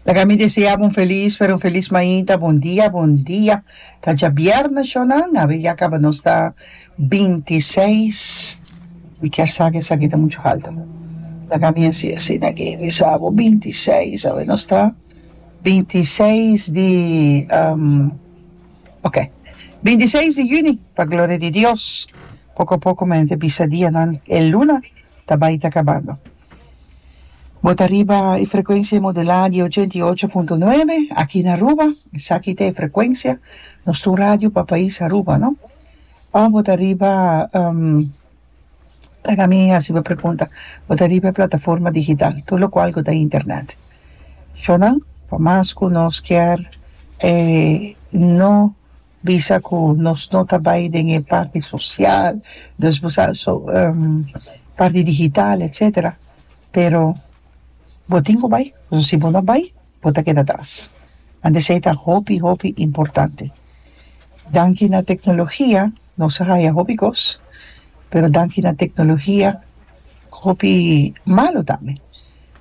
Laga mi desea bo un felis pero un felis mainta bon dia bon dia ta dja bièrnè shò nan a ya kaba nos ta binti seis mi kier sa ke esaki ta muchu haltu laga mi hasi asina ke bisa bo binti seis a nos ta binti seis di ok binti seis di juni pa gloria di Dios poko poko mente bisa dianan e luna ta bai ta kabando. Bo ta riba e frekuensia modulá di ochenta i ocho punto nuebe aki na Aruba. Esaki ta e frekuensia. Nos ta un radio pa pais Aruba, no? Òf bo ta riba, laga mi hasi bo e pregunta, bo ta riba e plataforma digital, tur lokual ku ta internet. Shornan, pa mas ku nos kier e no. Bisa cu nos no ta bay den e parti social dus bo sa so parti digital etcetera pero bo tin cu bay pasobra si bo no bay bo ta keda atras anto esey ta hopi hopi importante danki na tecnologia nos a haya hopi cos pero danki na tecnologia hopi malo tambe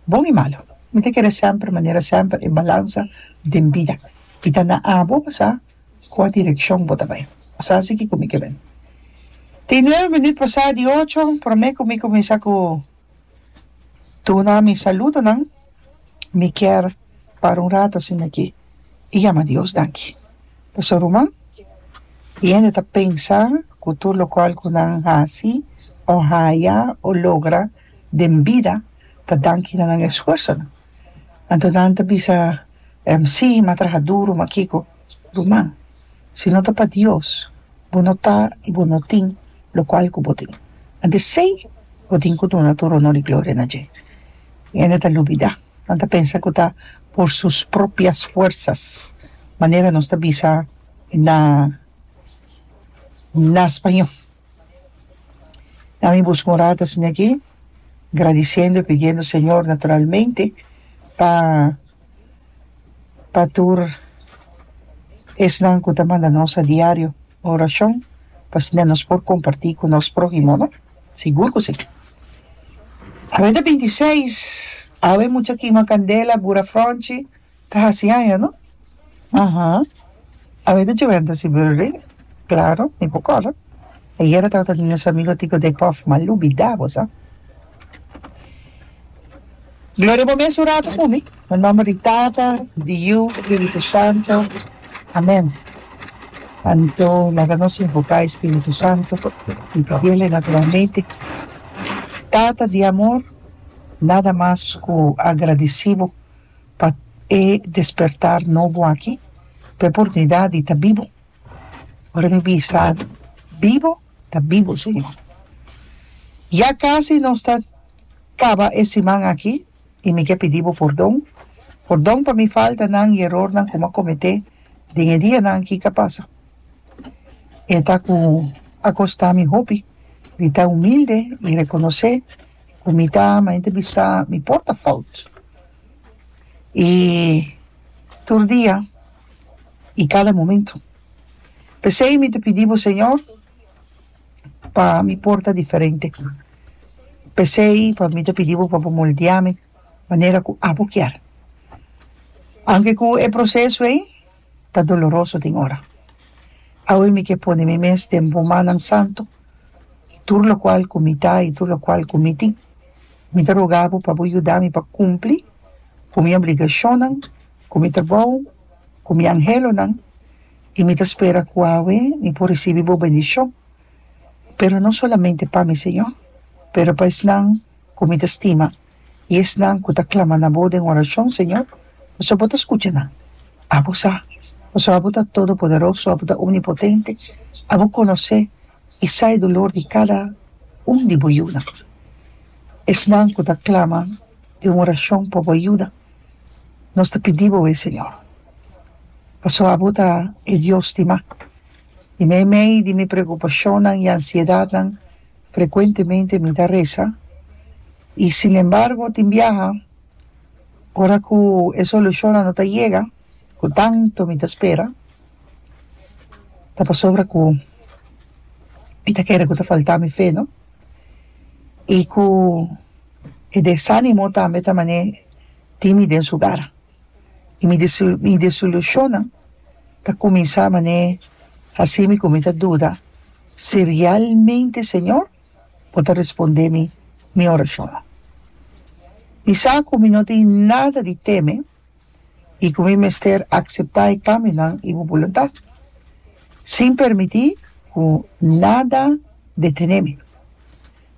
bon y malo mi ta kere semper manera semper e balanza den bida. Kita na abo pa sa kua direkshon bo ta bai. Bo sa si kiko mi ke bai. Tin nuebe minüt pasá di ocho, promé ku mi kuminsá ku duna mi saludonan, mi kier para un rato asin'akí i yama Dios danki. Pasobra, ruman, e hende ta pensa ku tur lokual ku nan hasi o haya o logra den bida ta danki na nan esfuersonan. Anto nan ta bisa MC m'a traha duru m'a kiko? Ruman, si no ta pa Dios bo no ta i bo no tin lokual ku bo tin. Anto esei bo tin ku duna tur onor i gloria na dje. E hende ta lubidá, nan ta pensa ku ta por sus propias fuersas, manera nos ta bisa na na spañó. Ta mi buska un rata sin aki gradiciendo y pidiendo Señor naturalmente pa pa tur esnan cu ta manda nos adiario oracion pa asina nos por comparti cu nos projimo no sigur cu si awe ta binti seis awe mucha kima candela bura fronchi Ta hasi aña no? Aha. Awe ta juwenta si birthday? Claro, mi por corda. Ayera tabata di nos amigo Tico Decoff, m'a lubida bo sa. Gloria bo mes un rato cu mi. Na nomber di Tata, di Yu, di Spiritu Santo. Amen. Anto laga nos invoca e Spiritu Santo y pidele naturalmente. Tata di amor, nada mas cu agradeci bo. pa e despertar nobo aki, pa e oportunidad di ta bibo. Ora mi bisa bibo, ta bibo Señor. Ya casi nos ta caba e siman aki y mi ke pidibo pordon, pordon pa mi faltanan y erornan cu mi a comete den e dianan aki cu a pasa. E ta cu a costa mi hopi di ta humilde y reconoce. Cu mi ta ama hende bisa mi por ta fout y tur dia y cada momento p'esey mi ta pidi bo Señor pa mi por ta diferente p'esey pa mi ta pidi bo pa bo moldea mi manera cu abo kier aunke cu e proceso ey. ta doloroso den ora. Awe mi ke pone mi mes den bo mannan santu, i tur lokual ku mi ta i tur lokual ku mi tin. Mi ta roga bo pa bo yuda mi pa kumpli ku mi obligashonnan, ku mi trabou, ku mi anhelonan, i mi ta spera ku awe mi por risibi bo bendishon, pero no solamente pa mi, Señor, pero pa esnan ku mi ta stima, i esnan ku ta klama na bo den orashon, Señor, pasobra bo ta skucha nan. Abo sa, pasobra abo ta Todopoderoso, abo ta Omnipotente, abo konosé i sai dolor di kada un di bo yunan. Esnan ku ta klama den orashon pa bo ayuda, nos ta pidi bo e, Señor, pasobra abo ta e Dios di ma. I mi ei mei di mi preokupashonnan i ansiedatnan Frecuentemente mi ta reza y sin embargo tin biaha ora cu e solucionnan no ta yega cu tanto mi ta spera ta pasobra cu mi ta kere cu ta falta mi fe no y cu e desanimo tambe ta mane tin mi den su gara. i mi mi desilushona ta kuminsá manera e hasi mi ku mi ta duda si realmente Señor bo ta respondé mi mi orashonnan. Mi sa ku mi no tin nada di teme i ku mi mester akseptá e kambionan i bo boluntat, sin permití ku nada detené mi.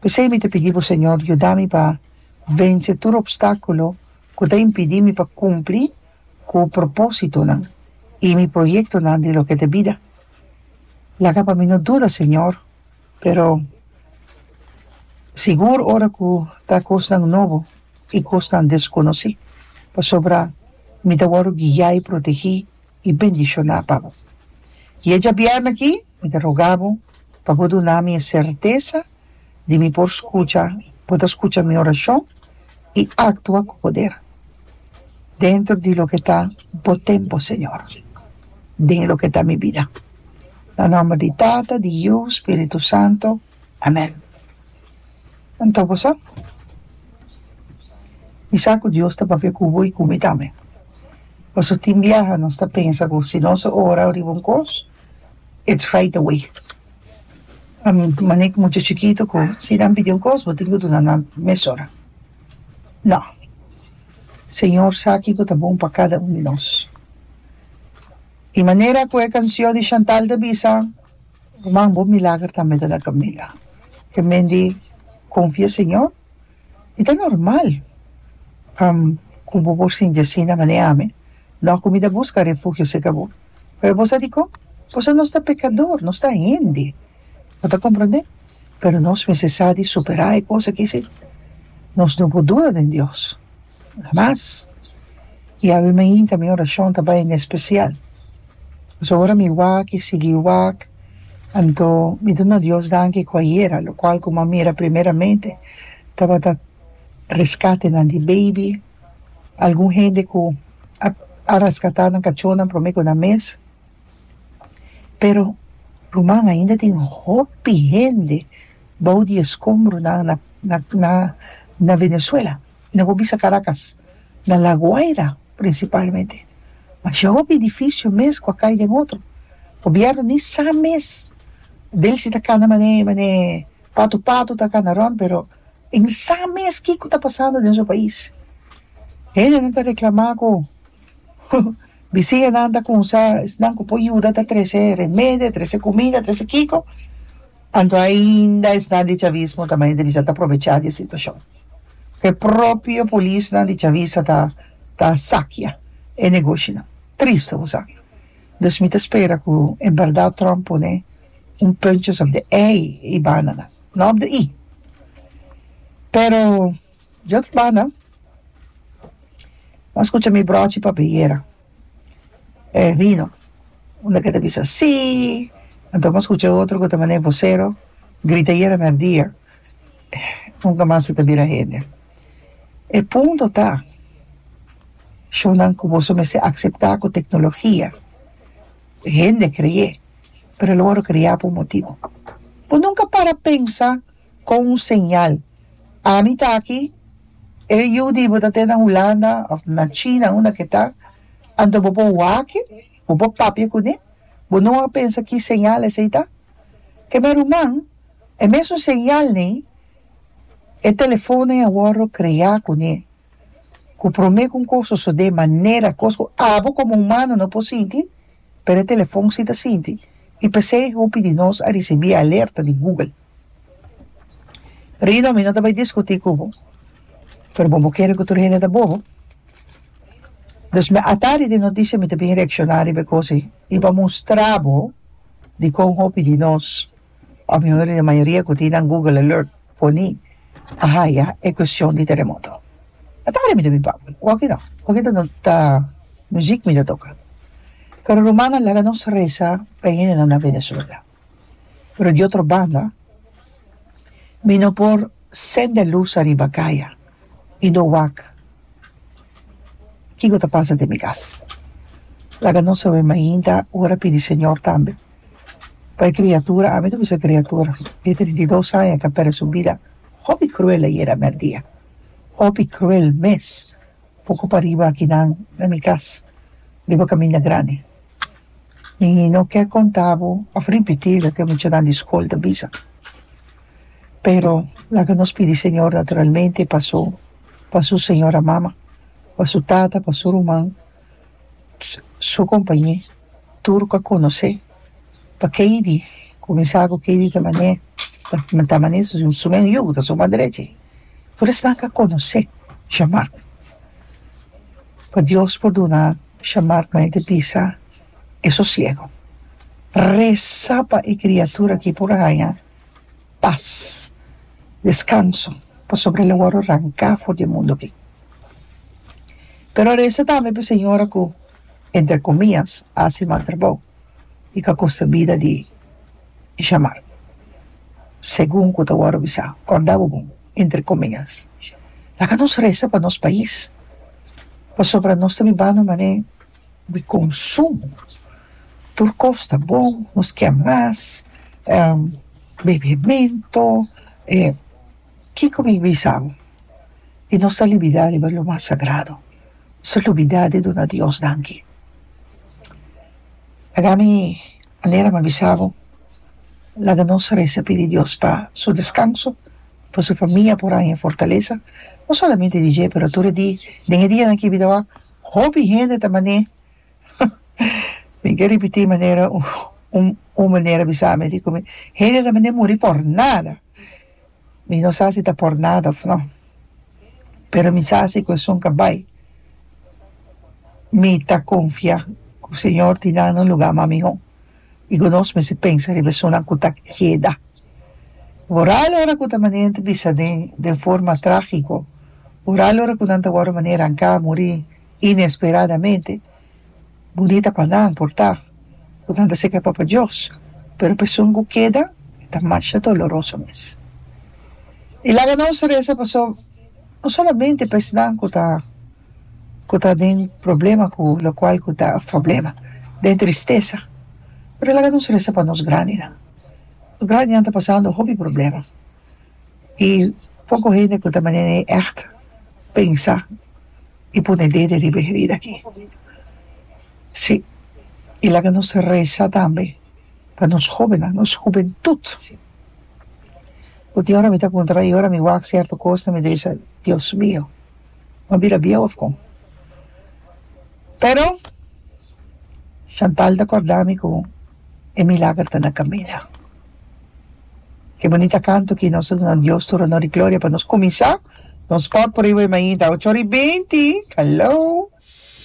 P'esei mi ta pidi bo Señor yuda mi pa vense tur opstákulo. ku ta impidí mi pa kumpli ku propósitonan i mi proyektonan den loke ta bida. Laga pa mi no duda, Señor, pero sigur ora ku ta kosnan nobo i kosnan deskonosí, pasobra mi ta wòrdu guiá i protegí i bendishoná pa bo. I e djabièrnè akí mi ta rogá bo pa bo duna mi e sertesa di mi por skucha, bo ta skucha mi orashon i aktua ku poder dentro di loke ta bo tempu, Señor, den loke ta mi bida. Na nòmber di Tata, di Yu, Spiritu Santu. Amen. Anto bo sa? Mi sa ku Dios ta papia ku bo i ku mi tambe. Paso tin biaha nos ta pensa ku si nos a ora riba un kos, it's right away. Manera ku mucha chikitu ku si nan pidi un kos bo tin ku duna nan mesora. No. Señor sa kiko ta bon pa kada un di nos. I manera ku e kansion di Chantal ta bisa, Ruman, bo milager tambe ta na Camila. E men di, Confia e Señor, y ta normal cu bo por sinti asina manera ami, no cu mi ta busca refugio cerca bo. Pero bo sa dicon? Bo sa nos ta pecador, nos ta hende. Bo ta comprende? Pero nos mester sa di supera e cosa aki si nos no por duda den Dios. mas i abi mi hinta mi orashon ta bai na espesial pasobra ora mi wak i sigui wak anto mi duna Dios danki ku ayera lokual komo a mira primeramente tabata reskatenan di beibi algun hende ku a reskatá nan kachónan promé ku nan mes pero ruman ainda tin hopi hende bou di e skombronan na na na Venezuela. Na hopi sa Caracas, na La Guaira principalmente, masha hopi edificio mes cu a cay den otro. Gobierno ni sa mes del si ta cana mane mane patu patu ta cana rond pero in sa mes kico ta pasando den su pais. Hendenan ta reclama cu biciñanan ta cunsa esnan cu por yuda ta trece remedio, trece comida, trece kico. Anto ainda esnan di chavismo ta manera di bisa ta probecha di e situashon. E propio polisnan di chavista ta ta sakia e negoshinan. Triste bo sabi. Dus mi ta spera ku en bèrdat Trump pone un punches op de ei i banda nan, no op de i. Pero di otro banda, bo a skucha mi bròchi papeyera. e vino unda ke ta bisa si anto mos skucha e otro ku ta mane vosero grita ayera mèrdia nunka mas e ta bira hende e punto ta shunnan ku boso mester akseptá ku teknologia hende krey'é pero lo wòrdu krea pa un motibu bo nunka para pensa. con un señal. Ami ta aki, e yu di bo ta te na Hulanda of na China unda ke ta, anto bo por wak-e, bo por papia kuné, bo no a pensa ki señal esei ta. Keme ruman, e mesun señal nei, e telefono ei a wòrdu krea kuné, ku promé ku un kos sosodé, manera kos ku abo komo humano no por sinti, pero e telefon si ta sinti i p'esei hopi di nos a risibí e alerta di Google. Rino, mi no ta bai diskutí ku bo, pero bo bo kere ku tur hende ta bobo. Dus mi a tari di notisia mi ta bin reakshoná riba e kos ei i bo a mustra bo dikon hopi di nos of mi hopi mayoria cu tin nan google alert poni a haya e cuestion di teremoto a tawata mi ta bin papia oki no oki ta ta music mi ta toca pero rumana laga nos resa pa e hendenan na Venezuela pero di otro banda mi no por sende luz ariba caya y no wak kico ta pasa den mi cas laga nos a win mainta ora pidi Señor tambe. Bay criatura ami ta bisa criatura di trinta i dos aña ca perde su bida hopi cruel ayera merdia hopi cruel mes poco pariba aki nan na mi cas riba caminda grandi mi no ke conta bo of ripiti loke muchanan di school ta bisa pero laga nos pidi señor naturalmente pa su pa su señora mama pa su tata pa su ruman su compañe. Tur cu a conoce pa Kady cuminsa cu Kady ta mane ta mane su men yugu ta su man derecha tur esnan cu a conoce Jean-Marc pa Dios por duna Jean-Marc mane di bisa e sosiego reza pa e criatura aki por haña paz descanso pasobra elo worde ranca for di e mundo aki pero reza tambe pa e señora cu. entre comillas, haci mal trabou y ca custa bida di Isamar, segun cu ta worde bisa. Corda bo bon, entre comillas, laga nos reza pa nos pais, pasobra nos ta biba na un mane di consumo, tur cos ta bon, nos kier mas, bebe mento, Kiko mi bisau? I nos ta libidá riba lo mas sagrado. Nos ta lubidá di duna Dios danki. Laga mi manera mi a bisa bo, laga nos resa pidi Dios pa su descanso, pa su famia por haña fortalesa, no solamente di dje pero tur e di. Den e dianan ki a bidau hopi hende ta manee. Tin ke ripití manera un un manera a bisa mi di ku mi hende ta mende muri por nada mi no sa si ta por nada òf nò pero mi sa si ku esun ka bai mi ta konfia ku señor tin nan na un lugá mas mihó i ku nos mester pensa riba esunnan ku ta keda oral ora ku ta manera nan ta bisa den forma trágiko oral ora ku nan ta wòrdu manera anka muri Inesperadamente, boni ta pa nan por ta cu nan ta seca e Papa Dios, pero pa esun cu keda, e ta masha doloroso mes. I laga nos reza pasobra no solamente pa esnan cu ta cu ta den problema cu locual cu ta problema, den tristeza, pero laga nos reza pa nos grandinan. Nos grandinan ta pasando hopi problema. y poco hende cu ta manera e echt pensa y pone dedo riba e herida aki si y laga nos reza tambe pa nos hobennan nos hubentud cu tin ora mi ta puntra y ora mi wak cierto cos mi ta bisa Dios mio mi a bira bieuw of con pero Chantal ta cordami cu e milager ta na camina. E bonita kanto ki nos Señor Dios tur honor i gloria pa nos kuminsá nos sport por e wemaiinta ocho ora i beinti. Hallo.